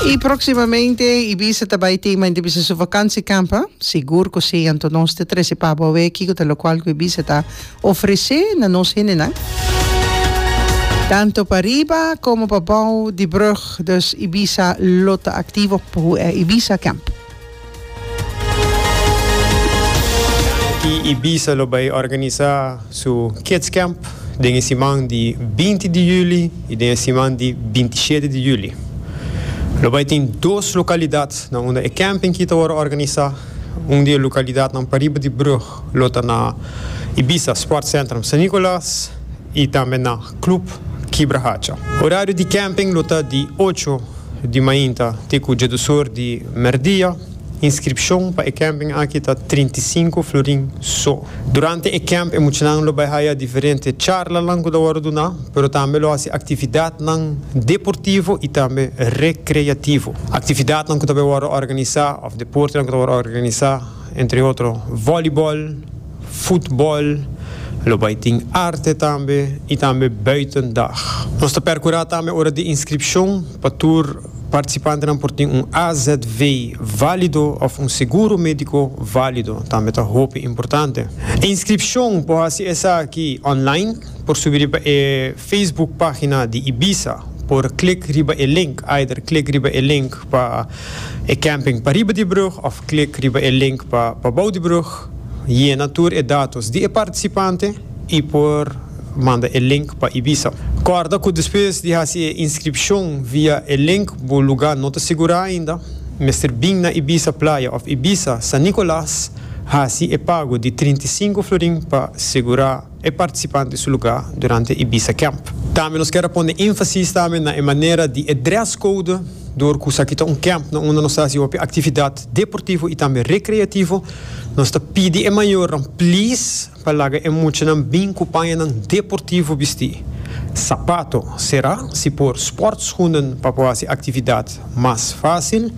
I proximamente Ibiza ta bai tin mainti bisa su vakansi kamp. Sigur ku si, anto nos ta trese pa bo awé kiko ta lokual ku Ibiza ta ofresé na nos hendenan. Tanto pa riba komo pa bou di brug, dus Ibiza lo ta aktivo, por ho'e Ibiza kamp. Ki Ibiza lo bai organisa su Kids Camp den e siman di binti di juli i den e siman di binti shete di juli. Lo bai tin dos lokalidatnan unda e camping ki ta wòrdu organisa. Un di e lokalidatnan pariba di brug lo ta na Ibiza Sportcentrum San Nicolas i tambe na. Club Kibra Hacha. Horario di camping lo ta di ocho di mainta te cu djedusor di merdia. Inscripcion pa e camping aki ta trinta i sinku florin so. Durante e camp e muchanan lo bay haya diferente charlanan cu ta worde duna, pero tambe lo haci actividadnan deportivo y tambe recreativo. Actividadnan cu ta bay worde organiza of deportenan cu ta worde organiza entre otro volleyball, futbòl, lo bai tin arte tambe i tambe buiten dag. Nos ta perkurá tambe ora di inskripshon pa tur partisipantenan por tin un azv válido òf un seguro médiko válido, tambe ta hopi importante. E inskripshon por hasi esaki ònlain, por subi riba e Facebook página di Ibiza, por klik riba e link, either klik riba e link pa e kèmping pariba di e brug òf klik riba e link pa pabou di e brug. Talk. Yena tur e datos di e partisipante i por manda e link pa Ibiza. Kòrda ku despues di hasi e inskripshon via e link bo lugá no ta sigurá ainda. Mester bin na Ibiza Playa òf Ibiza San Nicolas hasi e pago di trinta i sinku florin pa sigurá. e participante su luga durante Ibiza Camp. Tambe nos kier a pone enfasis tambe na e manera di e dress code dor cu esaki ta un camp na unda nos ta haci hopi actividad deportivo y tambe recreativo. Nos ta pidi e mayornan please pa laga e muchanan bin cu pañanan deportivo bisti, sapato sera, si por sportschoenen pa por haci actividad mas facil.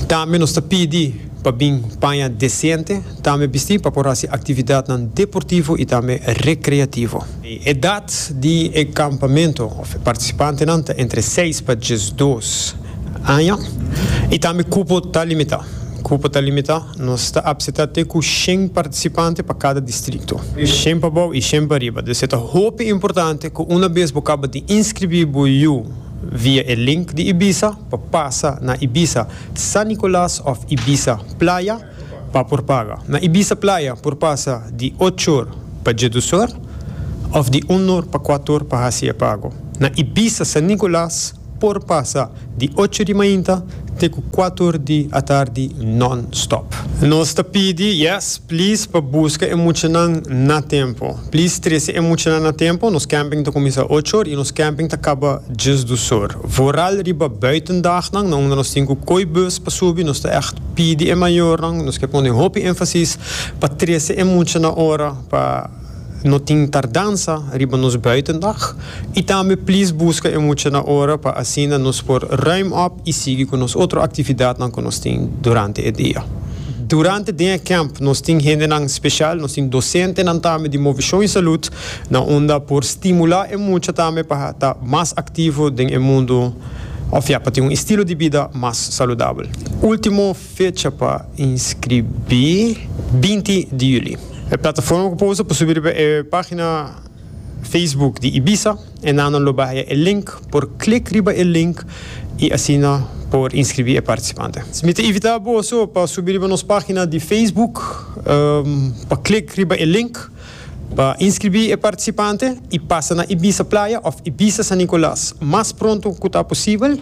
Tambe nos ta pidi pa bin paña decente. Tambe bisti pa por hasi aktividatnan deportivo i tambe rekreativo. E edat di e kampamentu òf e partisipantenan ta entre seis pa diesdos aña i tambe kupo ta limitá. Kupo ta limitá, nos ta apsetá te ku shen partisipante pa kada distrikto. Shen pa bou i shen pa riba. Dese ta hopi importante ku una bes bo kaba di inskribí bo yu via e link di Ibiza pa pasa na Ibiza San Nicolas òf Ibiza Playa, pa por paga. Na Ibiza playa por pasa di ochor pa djedusor of di unor pa kuator pa hasi e pago. Na Ibiza San Nicolas por pasa di ocho di mainta te ku kuator di atardi non-stop. Nos ta pidi, yes, please pa buska e muchanan na tempo. Please trese e muchanan na tempo, nos camping ta kuminsa ochor i nos camping ta kaba djesdusor. Vooral riba buitendagnan na unda nos tin ku kooibus pa subi, nos ta echt. pidi e mayornan nos ke pone hopi énfasis pa trese e mucha na ora pa no tin tardansa riba nos buitendag i tambe plis buska e mucha na ora pa asina nos por ruim op i sigui ku nos otro aktividatnan ku nos tin durante e dia. Durante den e kemp nos tin hendenan spesial, nos tin dosentenan tambe di Movishon i Salud na unda por stimulá e mucha tambe pa ta mas aktivo den e mundu. Òf ya pa tin un estilo di bida mas saludabel. Último fecha pa inskribí, binti di juli. E plataforma ku por usa por subi riba e página Facebook di Ibiza. E nannan lo bahia e link, por klik riba e link i asina por inskribí e partisipante. Mi ta invitá boso pa subi riba nos página di Facebook pa klik riba e link. Pa inskribí e partisipante i pasa na Ibiza Playa òf Ibiza San Nicolas mas pronto ku ta posibel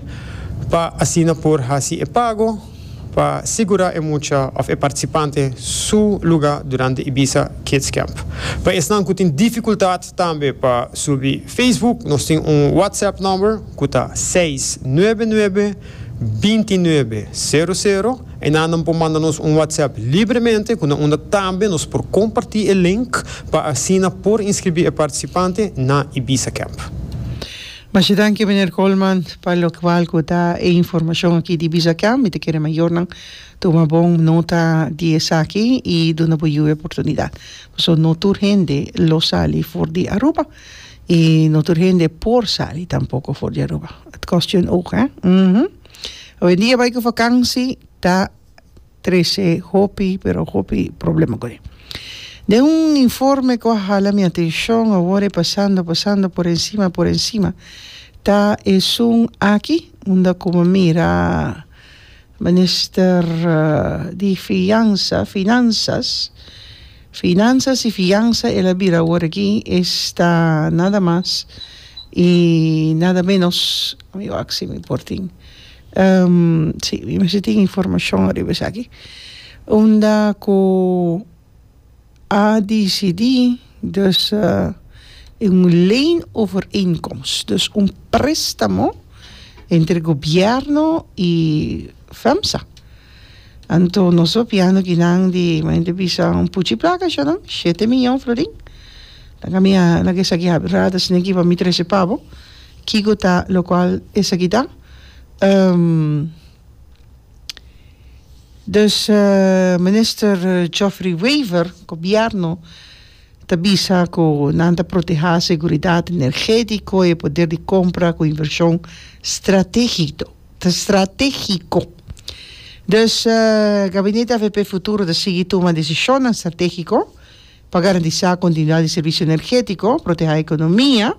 pa asina por hasi e pago pa sigurá e mucha òf e partisipante su lugá durante Ibiza Kids Camp. Pa esnan ku tin difikultat tambe pa subi Facebook nos tin un WhatsApp nòmber ku ta seis nuebe nuebe binti nuebe sero sero, Enan nan por manda nos un WhatsApp libremente ku nan unda tambe nos por kompartí e link pa asina por inskribí e partisipante na Ibiza Camp. Masha danki Meneer Colman pa lokwal ku da e informashon aki di Ibiza Camp. Mi ta kere mayornan tuma bon nota di esaki i duna bo yu e oportunidat. Paso no tur hende lo sali for di Aruba. Y no tur hende por sali tampoco for di Aruba. Het kost je een oog, hè? Mhm. Hoevendia bai ku vakansi ta trese hopi, pero hopi problema kore. Den un informe ku a hala mi atenshon awor e pasando, pasando por ensima, por ensima, ta esun aki unda ku mi mira Minister di Fiansa, Finansas, Finansas i Fiansa el a bira awor aki esta nada mas i nada menos mi wak si mi por tin si mi mester tin informashon riba esaki unda ku. A disidí dus den un leenovereenkomst, dus un préstamo entre gobièrnu i FEMSA. Anto nos a pia no kinan di, mi hende bisa un puchi plaka ashonan, shete miyon florin. Dan ami a na ke esaki habri rada sino ke pa mi trese pabo kiko ta lokual esaki ta. Dus minister Geoffrey Wever, gobierno, ta bisa ku nan ta protehá seguridat energétiko i e poder di kompra ku invershon strategito stratégiko. Dus gabinete avp futuro ta sigui tuma desishonnan stratégiko pa garantisá kontinuidat di servisio energétiko, protehá ekonomia.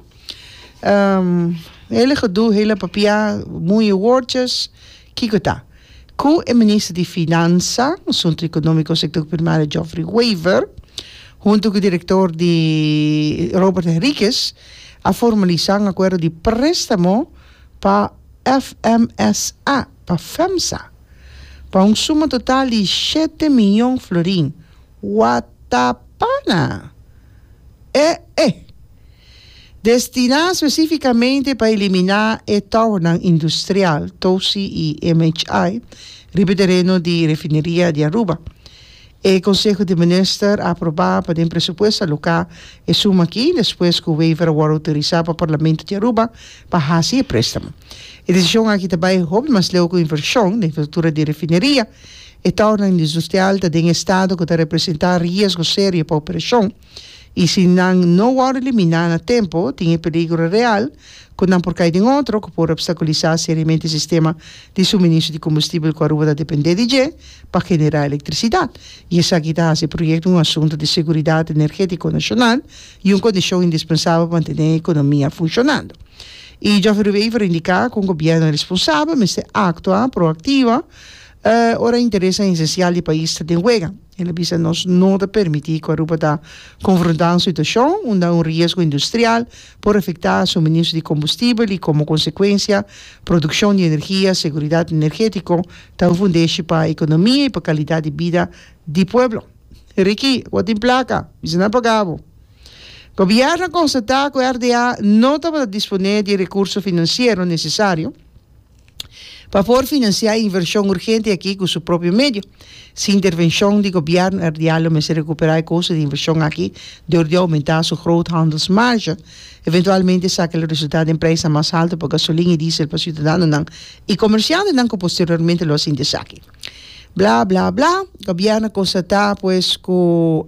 Ehm, hele gedoe, hele papiá, muñe woordjes. Kiko ta ku e minister di Finansa, Asuntu Ekonómiko, Sektor Primario Geoffrey Wever huntu ku direktor di Robert Henriquez a formalisá un akuerdo di préstamo pa FMSA, pa FEMSA, pa un suma total di shete mion florin. Wata pana! E e! Destiná spesífikamente pa eliminá e tounan industrial, Tosi i MHI, riba e tereno di Refineria di Aruba. E Konseho di Minister a aprobá pa den presupuesto aloká e suma akí despues ku waiver a wòrdu outorisá pa Parlamento di Aruba pa hasi e préstamo. E desishon aki ta bai hopi mas leu ku invershon na infrastruktura di refineria. E tounan industrial ta den estado ku ta representá riesgo serio pa operashon. I si nan no wòrdu eliminá na tempu, tin e peligro real ku nan por kai den otro ku por obstakulisá seriamente e sistema di suministro di kombustibel ku Aruba ta dependé di dje pa generá elektrisidat, i esaki ta hasi e proyekto un asuntu di seguridat energétiko nashonal i un kondishon indispensabel pa mantené e ekonomia funshonando. I Jòfrey Ruwever a indiká ku un gobièrnu responsabel mester aktua proaktivo ora interesnan esensial di pais ta den wega. El a bisa, Nos no ta permití ku Aruba ta konfrontá un situashon unda un riesgo industrial por afektá suministro di kombustibel i komo konsekuensia produkshon di energia. Seguridat energétiko ta un fundeshi pa ekonomia i pa kalidat di bida di pueblo. Ricky, bo tin plaka? Bisa nan pagá bo. Gobièrnu a konstatá ku RDA no tabata disponé di e rekurso finansiero nesesario. pa por financia e inversion urgente aki cu su propio medio. Si intervencion di Gobierno RDA lo mester recupera e costo di inversion aki dor di aumenta su groothandelsmarge, eventualmente saca lo resulta den prijsnan mas halto pa gasolin y diesel pa ciudadanonan y comerciantenan cu posteriormente lo a sinti esaki. Bla, bla, bla, Gobierno constata pues cu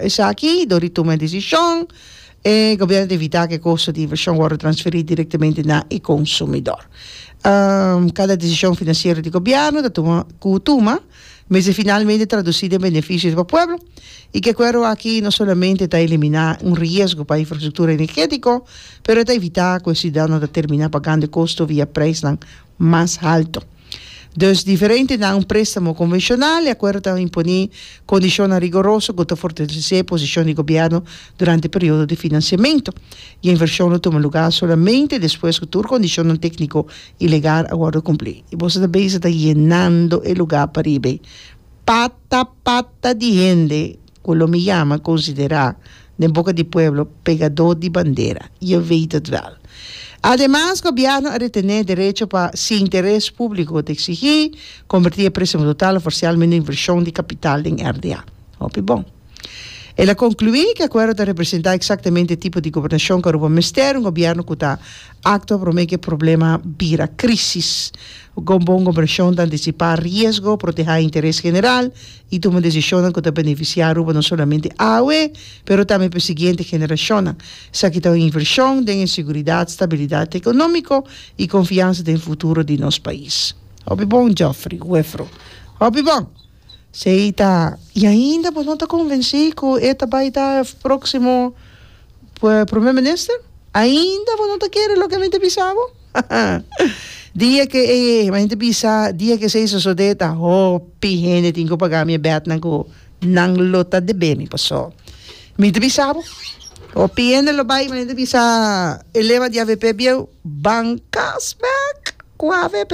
esaki dor di tuma e decision. E gobierno ta evita cu e costo di inversion worde transferi directamente na e consumidor. Cada decision financiero di gobierno ta tuma cu tuma mester finalmente traduci den beneficio di bo pueblo y cu e acuerdo aki no solamente ta elimina un riesgo pa infrastructura energetico pero e ta evita cu e ciudadanonan ta termina pagando e costo via prijsnan mas halto. Dus diferente na un préstamo konvenshonal, e akuerdo ta imponí kondishonnan rigoroso ku ta fortalesé posishon di gobièrnu durante e periodo di finansiamentu, i e invershon lo tuma lugá solamente despues ku tur kondishonnan tékniko i legal a wòrdu kumplí. I boso ta beza ta yenando e lugá pariba ei pata pata di hende. ku lo mi yama, konsiderá, den boka di pueblo, pegadó di bandera. Je wéét hèt wèl. Ademas, gobièrnu a retené derecho pa, si interes públiko ta eksigí, kombertí e préstamo total òf parsial mende invershon di kapital den RDA. Hòpi bon. El a konkluí ku e akuerdo ta representá eksaktamente e tipo di gobernashon ku Aruba mester, un gobièrnu ku ta aktua promé ku e problema bira krísis. Bon gobernashon ta antisipá riesgo, protehá e interes general i tuma desishonnan ku ta benefisiá Aruba no solamente awe, pero tambe pa e siguiente generashonnan. Esaki ta un invershon den e siguridat, stabilidat ekonómiko i konfiansa den futuro di nos pais. Hopi bon, Geoffrey, Huefro. Hopi bon! Sei ta. I ainda bo no ta konvensí ku e ta bai ta e próksimo Promé Minister? Ainda bo no ta kere loke mi ta bisa bo? Dia ke e hende bisa, dia ke esei sosode ta hopi hende tin ku paga mi e bètnan ku nan lo ta debé mi. Pasó mi ta bisa bo, hopi hende lo bai, hende bisa e lema di avp bieu, bankas bèk ku avp.